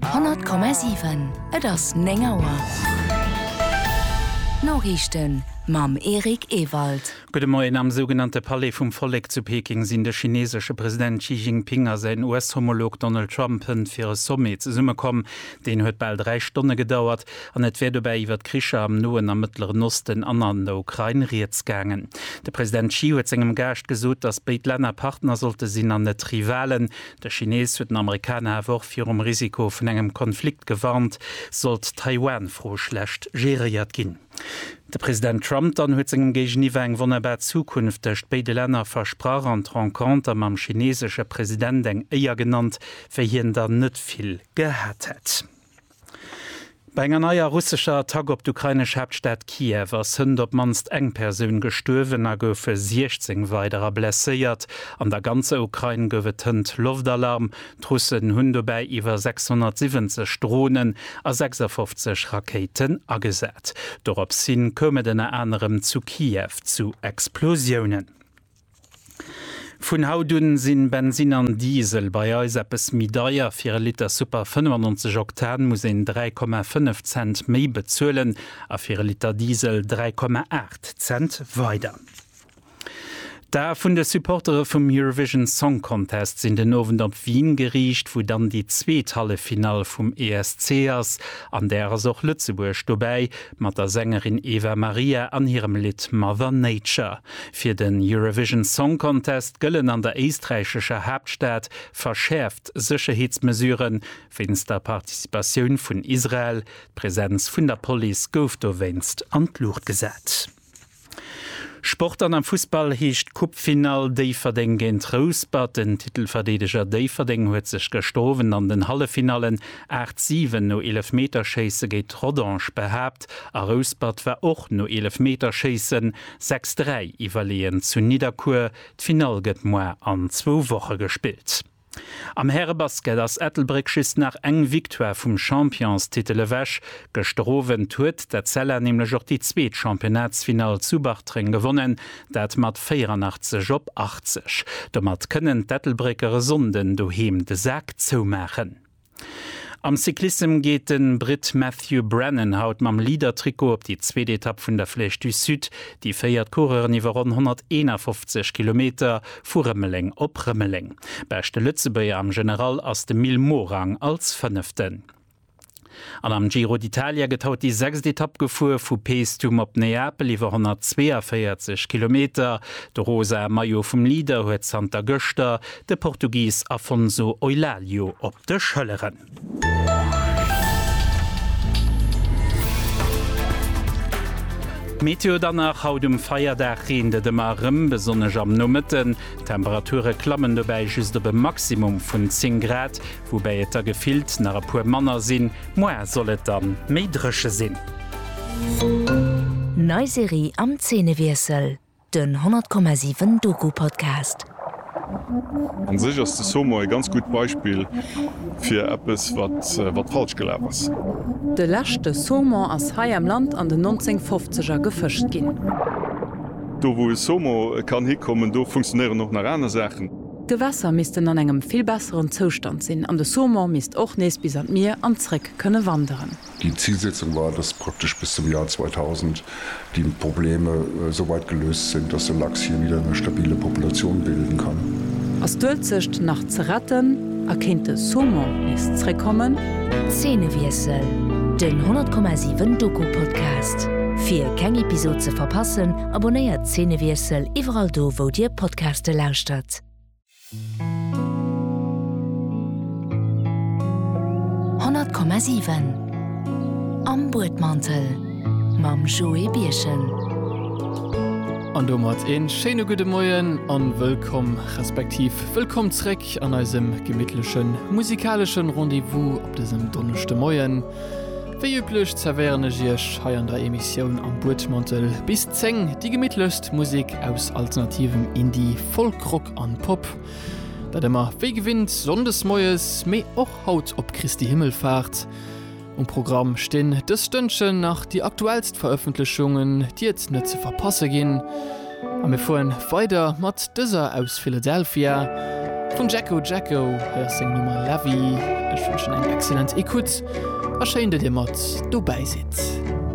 100,7 Et ass 9 Auer. D'Noriichten mam Eric Ewald. Gudde Moien. Am sougenannte Palais vum Vollek zu Peking sinn de chineesesche President Xi Jinping a säin US-Homolog Donald Trump hënt fir e Sommet zesummekomm. Deen huet bal dräi Stonne gedauert an et wär dobäi iwwer d'Kricher am Noen a Mëttleren Osten an an der Ukrain rieds gaangen. De President Xi huet sengem Gaascht gesot, datt béid Länner Partner sollte sinn an net Rivalen. De Chinees huet den Amerikaner awer och virum Risiko vun engem Konflikt gewarnt, sollt d'Taiwan-Fro schlecht geréiert ginn. De President Trump dann huet sengem Géigeniwwer eng wonnerbar Zukunft tëscht béide Länner versprach an d'Renconter mam chineesesche President eng Éier genannt, wéi hien der net vill gehat hätt. Bei enger neier russescher Attack op d'ukrainesch Haaptstad Kiew ass hënt op d'mannst eng Persoun gestuerwen a goufe 16 weiderer blesséiert. An der ganzer Ukrain gouf et hënt Loftalarm. D'Russen hunn dobäi iwwer 670 Dronen a 56 Rakéiten agesat. Dorops hin koum et ënner anerem zu Kiew zu Explosiounen. Vun haut un sinn Bensin an Diesel bei eis eppes méi deier. Fir e Liter Super 95 Oktan muss een 3,5 Cent méi bezuelen a fir e Liter Diesel 3,8 Cent weider. D'Ae vun de Supportere vum Eurovision Song Contest sinn den Owend op Wien geriicht, wou dann déi zweet Halleffinall vum ESC ass. An där ass och Lëtzebuerg dobäi mat der Sängerin Eva Maria an hirem Lidd Mother Nature. Fir den Eurovision Song Contest gëllen an der éisträichescher Haaptstad verschäerft Sécherheetsmesuren, wéinst der Participatioun vun Israel. D'Presenz vun der Police gouf dowéinst an d'Luucht gesat. Sport an Am Fussball heescht d'Coupe-Finall Déifferdeng géint Rouspert. Den Titelverdeedeger Déifferdeng huet sech gëschter Owend an den Halleffinallen 8, 7 no Eelefmeterschéisse géint Rodange behaapt a Rouspert war och no Eelefmeterschéissen Sechs dräi iwwerleeën zu Nidderkuer. D'Finall gëtt moar an zwou Woche gespillt. Am Härebasket ass Ettelbréck just nach eng Victoire vum Championstitel ewech. Gëschter Owend huet d'Etzella nämlech och déi zweet Championnatsfinall zu Bartreng gewonnen, dat mat 84 op 80. Domat kënnen d'Ettelbrécker e Sonnden doheem de Sak zoumaachen. Am Cyclissem geet de Britt Matthew Brennan haut mam Leader-Trikot op déi zweet Etapp vun der Flèche du Sud. Déi féiert d'Coureuren iwwer ronn 151 Kilometer vu Rëmeleng op Rëmeleng. Beschte Lëtzebuerger am General ass de Mil Morang als Fënneften. An am Giro d'Italia gëtt haut déi sechst Etapp gefuer, vu Paestum op Neapel iwwer 142 Kilometer. De rosae Maillot vum Leader huet zanter gëschter De Portugis Afonso Eulalio op de Schëlleren. Météo dann nach, Haut um Feierdag reent et ëmmer erëm, besonnesch am Nomëtten. D'Temperature klammen dobäi just op e Maximum vun 10 Grad, woubäi et der gefillt nach e puer manner sinn. Moar soll et dann méi dréche sinn. Nei Serie am Zeenewiessel. Den 100,7 Doku-Podcast. An sech ass de Somo e ganz gutt Beispill fir eppes wat falsch gelaf ass. De leschte Saumon ass hei am Land an den 1950er gefëscht ginn. Do wou e Somo kann hikommen, do funktionéieren och nach aner Saachen. D'Gewässer missten an engem vill besseren Zoustand sinn an de Saumon misst och nees bis an d'Mier an zréck kënne wanderen. Déi Zilsetzung war, dass praktesch bis zum Joer 2000 déi Probleme esou weit geléust sinn, dass de Lachs hie wieder eng stabile Populatioun bilden kann. Ass d'Uelzecht nach ze retten a kéint de Saumon nees zréckkommen? Zeenewiessel, den 10,7 Doku-Podcast. Fir keng Episod ze verpassen, abonnéiert Zeenewiessel iwwerall do wou dir Podcaste lauschtert. Honnert Komma siwen Am Buedmantel mam Joé Birchen. An domat ee schéine gudde Moien a wëllkomm, respektiv wëllkomm zréck an eisem gemittleche musikaleschen Rendez-vous op dësem Donneschdemoien. Wéi üblech zerwéieren ech iech hei an der Emissioun Am Buedmantel bis 10 déi gemittlechst Musek aus alternativem Indie, Folkrock an Pop. Dat ëmmer wéi gewinnt Sonndes moies, mee och haut op Christi Himmelfahrt. Um Programm stinn dës Stënnchen nach déi aktuellst Verëffentlechungen, déi et net ze verpasse ginn. A mir fueren weider mat dëser aus Philadelphia vum Jacko Jacko, hei ass seng Nummer La Vie. Ech wënschen eng excellent Ecoute a schéin, datt dir mat dobäi sidd.